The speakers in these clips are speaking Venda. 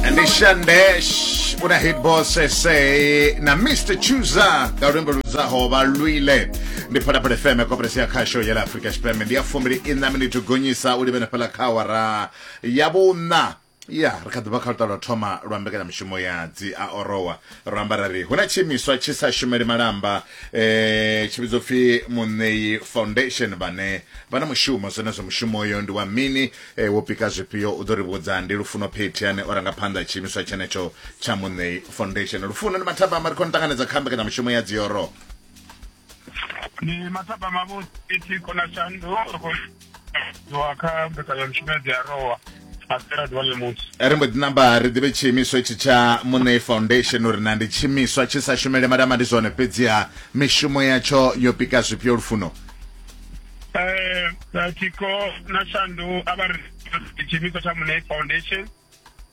ndishandesh una hit boss ese na mr chuza nga luimbo ludzaho vha lwile ndi phalaphala fm koperesi ya khasho ya la afrika tshipembe ndi ya fumbili ina miniti gonyisa u livhena fhala kha awara ya vhuṋa ya ri kha ḓivha kha luṱa lwa thoma lwa mbekanyamishumo ya dzi a orowa ro amba ra ri hu na tshiimiswa tshi sa shumeli malamba eh tshi vhidzwa pfi muṋeyi foundation vhane vha na mushumo zwenezwo mushumo uyo ndi wa mini e wo pika zwifhio u ḓo ri vhudza ndi lufuno phethi ane o ranga phanḓa tshiimiswa tshenetsho tsha muṋei foundation lufuno ndi mathabama ri khou ni ṱanganedza kha mbekanyamushumo ya dzioro ni mathabama vho phethi kona shandu ri khou wa kha mbekanyamushumo ya dziarowa asera ḓuvha ḽemusi ri mbo ḓi namba ri ḓivhe tshiimiswa itshi tsha muṋei foundation uri na ndi tshiimiswa tshi sa shumele madama ndi zwone fhedziha mishumo yatsho yo pika zwifhio lufuno Eh, eh, tiko na shandu a vha ri tshiimiswa tsha munei foundation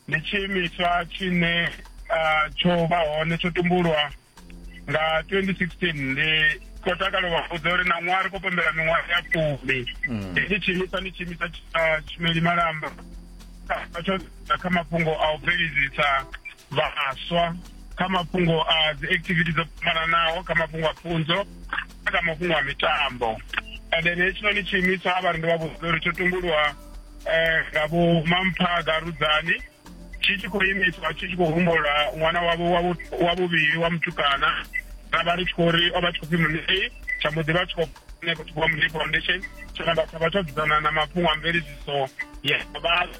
ndi tshiimiswa tshine ah, tsho vha hone tsho tumbulwa nga 2016 ndi khou takala wa vhudza uri na ṅwaha ri khou pembela miṅwaha ya fumi hetshi tshiimiswa ndi tshiimiswa tsha tshumeli malamba Tsha- tsho sedza kha mafhungo a u bveledzisa vhaswa kha mafhungo a dzi activity dzo fhambananaho kha mafhungo a pfunzo kha mafhungo a mitambo and then hetshinoni tshiimiswa a vha ri ndi vha vhudza uri tsho tumbulwa um nga vho mamphaga rudzani tshi tshi khou imiswa tshi tshi khou humbula ṅwana wavho wa vhuvhili wa mutukana ra vha ri tshi khou ri o vha tshi khou pfi munei tsha mbo ḓi vha tshi khou ṋekothiwa munei foundation tsho namba tsha vha tsho dzudzana na mafhungo a mveledziso ya vhathu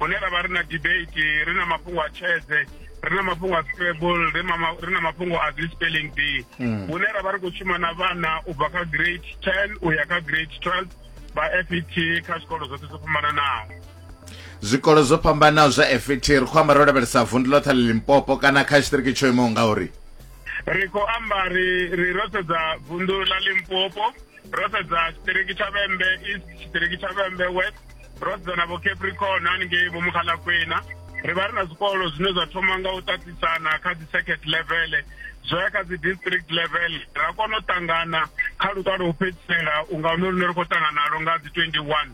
hune ra vha ri na debate ri na mafhungo a tshedze ri na mafhungo a scrabble ri na mafhungo a dzi spelling bee hmm. hune ra vha ri khou shuma na vhana u bva kha grade ten u ya kha grade twelve vha fet kha zwikolo zwoṱhe zwo fhambananaho zwikolo zwo fhambanaho zwa fet ri khou amba ro lavhelesa vundu ḽoṱhe ḽa limpopo kana kha tshitiriki tsho imaho ngauri ri khou amba ri ri ro sedza vundu ḽa limpopo ro sedza tshitiriki tsha vhembe east tshitiriki tsha vhembe west ro dzana vho capricorn haningei vho mukgalakwena ri vha ri na zwikolo zwine zwa thoma nga u ṱaṱisana kha dzi circuit level zwo ya kha dzi district level ra kona u ṱangana kha luṱa lwo u fhedzisela unga hune lune ri khou ṱangana nalo nga dzi 21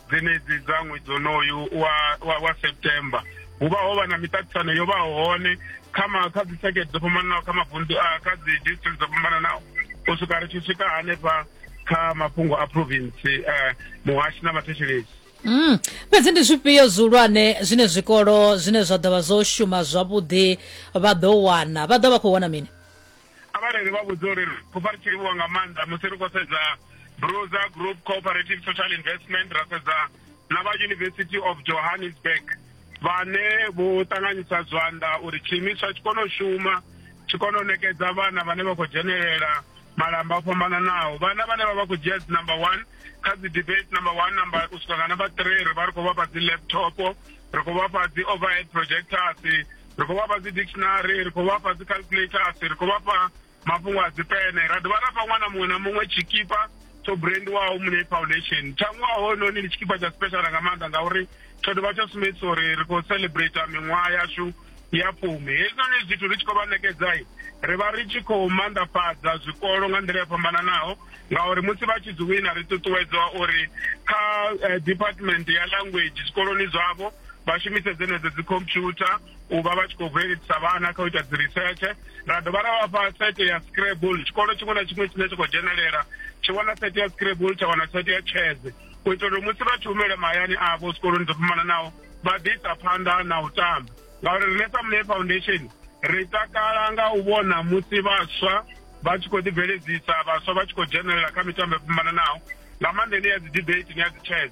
dzenedzi dza ṅwedzi onoyu wa, wa, wa september hu vha ho vha na miṱaṱisano yo vha hone kha ma kha dzi circuit dzo fhambananaho kha mavundu kha dzi district dzo fhambananaho u swika ri tshi swika hanefha kha mafhungo a province uh, muhashi na vhathetshelesi Mm. fhedzi ndi zwifhio zwihulwane zwine zwikolo zwine zwa ḓovha zwo shuma zwavhuḓi vha ḓo wana vha ḓo vha khou wana mini avhareli vha vhudza uri khou vha ri tshi livhuwa nga maanḓa musi ri khou sedza bruza group cooperative social investment ra sedza na vha university of johannesburg vhane vho ṱanganyisa zwanḓa uri tshiimiswa tshi kone u shuma tshi kone u nekedza vhana vhane vha khou dzhenelela malamba o fhambananaho vhana vhane vha vha khou dzhia dzi number one kha dzi debate number one number u swika nga number three ri vha ri khou vhafha dzi laptop ri khou vhafha dzi overhead projectors ri khou vhafha dzi dictionary ri khou vhafha dzi calculators ri khou vhafha Mafhungo a dzipene, ra dovha ra fha ṅwana muṅwe na muṅwe tshikipa tsho brendiwaho Muṋei Foundation. Tsha ṅwaha hoyunoni ndi tshikipa tsha special nga maanḓa ngauri tsho dovha tsha sumbedzisa uri ri khou celebrate miṅwaha yashu ya fumi hezwinoni zwithu ri tshi khou vha ṋekedzai ri vha ri tshi khou maanḓafhadza zwikolo nga nḓila yo fhambananaho ngauri musi vha tshi dzi wina ri ṱuṱuwedzwa uri kha eh, department ya language zwikoloni zwavho vha shumise dzenedzo dzi computer u vha vha tshi khou bveledzisa vhana kha u ita dzi research ra dovha ra vhafha sete ya scrabble tshikolo tshiṅwe na tshiṅwe tshine tshi khou dzhenelela tshi wana sete ya scrabble tsha wana sete ya chese u itela uri musi vha tshi humele mahayani avho zwikoloni dzo fhambananaho vha ḓi isa phanḓa na u tamba ngauri rine sa mune foundation ri takala nga u vhona musi vhaswa vha tshi khou ḓibveledzisa vhaswa vha tshi khou dzhenelela kha mitambo yo fhambananaho nga maanḓa ine ya dzi debate ni ya dzi chess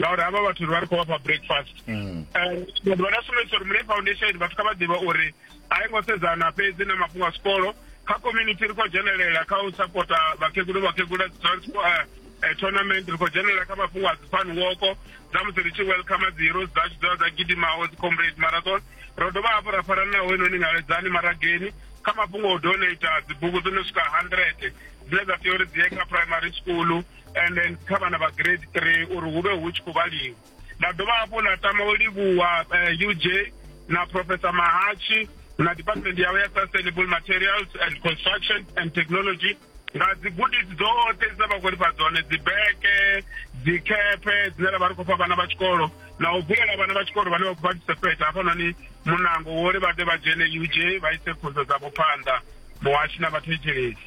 ngauri havha vhathu ri vha ri khou vhafha breakfast mm. eh, ri vha na sumbedzisa uri mulayi foundation vhathu kha vha ḓivha uri a i ngo sedzana fhedzi na mafhungo a sikolo kha community ri khou dzhenelela kha u sapota vhakegulu vhakegula eh, eh, tournament ri khou dzhenelela kha mafhungo a dzifan woko dza musi ri tshi welcome dzi heroes dzashu dza dza gidimaho dzi comrade marathon ro dovha hafhu ra farana naho inoni ngaledzani marageni kha mafhungo o donata dzibugu dzo no swika hundred dzine dza tea uri dzi ye kha primary school and then kha vhana vha grade three uri hu vhe hu tshi khou vhaliwa nda dovha hafhu nda tama u livhuwa eh, uj na professor mahachi na department yawo ya sustainable materials and construction and technology nga dzigudisi dzoṱhe dzine vha khou ri fha dzone dzibeke dzikhephe dzine ra vha ri khou fha vhana vha tshikolo na u vulela vhana vha tshikolo vhane vha khou participate hafhanoni munango wo ri vha ḓe vha dzhene uj vha ise pfunzo dzavho phanḓa muhashi na vhathetshelesi